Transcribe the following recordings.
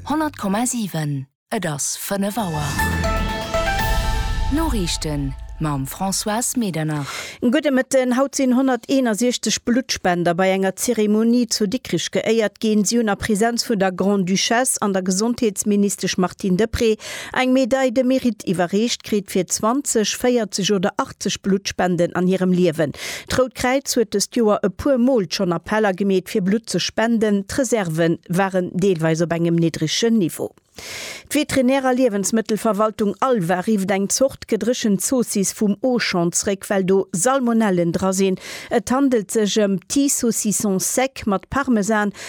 Honnert Komma siwen, Et ass fënnef Auer. D'Noriichten mam Françoise Medernach. Gudde Mëtten, Haut sinn 161 Bluttspender bei enger Zeremonie zu Dikrich geéiert ginn. Si hunn a Präsenz vun der Grande-Duchesse an der Gesondheetsministesch Martine Deprez Eng Médaille de Mérite iwwerreecht kritt fir 20, 40 oder 80 Bluttspenden an hirem Liewen. D'Rout Kräiz huet dëst Joer e puer Mol schonn Appeller gemeet fir Blutt ze spenden. D'Reserve waren deelweis op engem niddregen Niveau. D'Veterinär a Liewensmëttelverwaltung Alva rifft eng Zort gedréchent Zoossiss vum Auchan zréck, well do Salmonellen dra sinn. Et handelt sech ëm Petit Saucisson Sec mat Parmesan,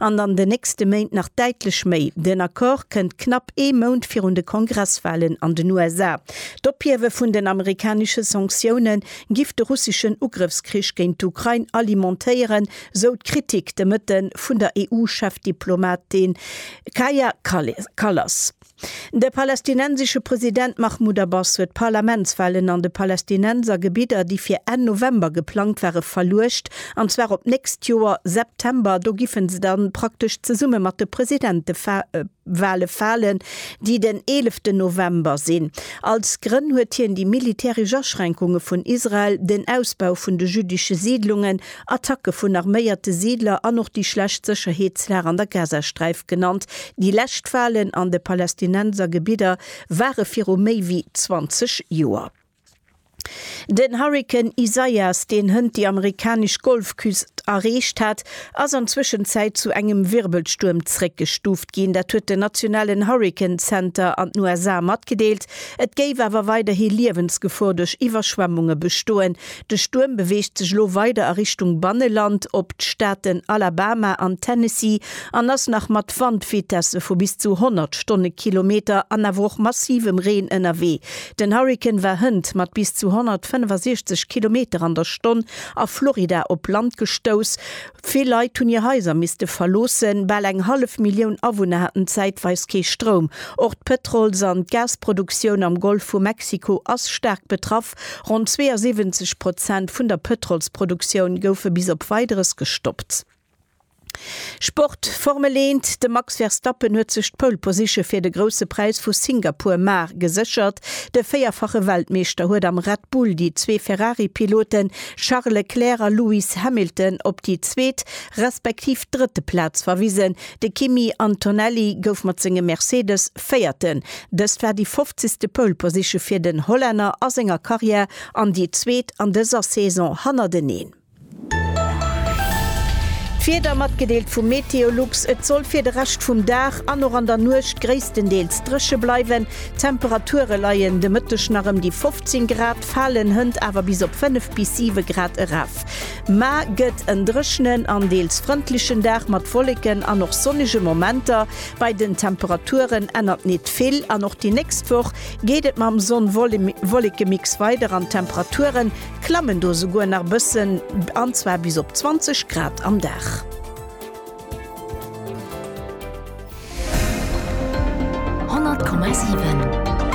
An an den nächste Méint nach däitlech méi. Den Accord kënnt knapp ee Mount virun de Kongresswalen an den USA. D'Ophiewe vun den amerikanesche Sanktioune giff de russeschen Ugrëffskrich géint d'Ukrain alimentéieren, sou d'Kritik de Mëtten vun der EU-Chefdiplomatin Kaja Kallas. De palästinensesche President Mahmoud Abbas huet d'Parlamentswahlen an de Palästinenser Gebidder, déi fir Enn November geplangt ware, verluecht, an zwar op d'nächst Joer September. Do giffen se dann praktesch zesumme mat de Presidentewale falen, déi den eeleften November sinn. Als Grënn huet hien déi militäresch Aschränkunge vun Israel, den Ausbau vun de jüddesche Siidlungen Attacke vun arméierte Siidler an och déi schlecht Sécherheetslag an der Gazasträif genannt. Déi lescht Walen an de Palästinenser Gebidder ware viru méi wéi 20 Joer. Den Hurrikan Isaias, deen hënt déi amerikanesch Golfküst erreecht hat, ass an Zwëschenzäit zu engem Wirbelstuerm zréckgestuuft ginn. Dat huet den nationalen Hurrikan Center an den USA matgedeelt. Et géif awer weiderhi Liewensgefor duerch Iwwerschwemmunge bestoen, De Stuerm beweegt sech elo weider a Richtung Banneland op d'Staaten Alabama an Tennessee an ass nach mat Wandvitesse vu bis zu 100 Stonnekilometer an awer och massivem Reen ënnerwee. Den Hurrikan war hënt mat bis zu 165 Kilometer an der Stonn a Florida op Land gestouss. Vill Leit hunn hir Haiser misste verloossen. Bal eng hallef Millioun Awunner haten zäitweis kee Stroum. Och d'Pëtrols an d'Gasproduktioun am Golf vu Mexiko ass staark betraff. gestoppt. Ronn 72 Prozent vun der Pëtrolsproduktioun goufe bis op Weideres gestoppt. Sport, Formel 1, De Max Verstappen huet sech d'Pole Position fir de Grousse Präis vu Singapur, mar, geséchert. De véierfache Weltmeeschter huet am Red Bull déi zwee Ferrari-Pilote Charles Leclerc a Lewis Hamilton op déi zweet respektiv drëtte Plaz verwisen. De Kimi Antonelli gouf mat sengem Mercedes op Véierten. Dëst war déi fofzigste Pole Position fir den Hollänner a senger Karriär an déi zweet an dëser Saison hannerteneen. D'Wieder matgedeelt vu Meteolux, Et soll fir de Rescht vum Dag an och an der Nuecht gréisstendeels dréche bleiwen. D'Temperature leien de Mëtteg nach ëm déi 15 Grad, falen hënt awer bis op 5 bis 7 Grad eraf. Ma gëtt en dréchnen an deels frëndlechen Dag mat Wolleken an och sonnege Momenter. Bei den Temperaturen ännert nit vill an och déi nächst Woch geet et mam Sonn-Wollekemix weider an d'Temperature klammen do souguer nach e bëssen, an zwar bis op 20 Grad am Dag.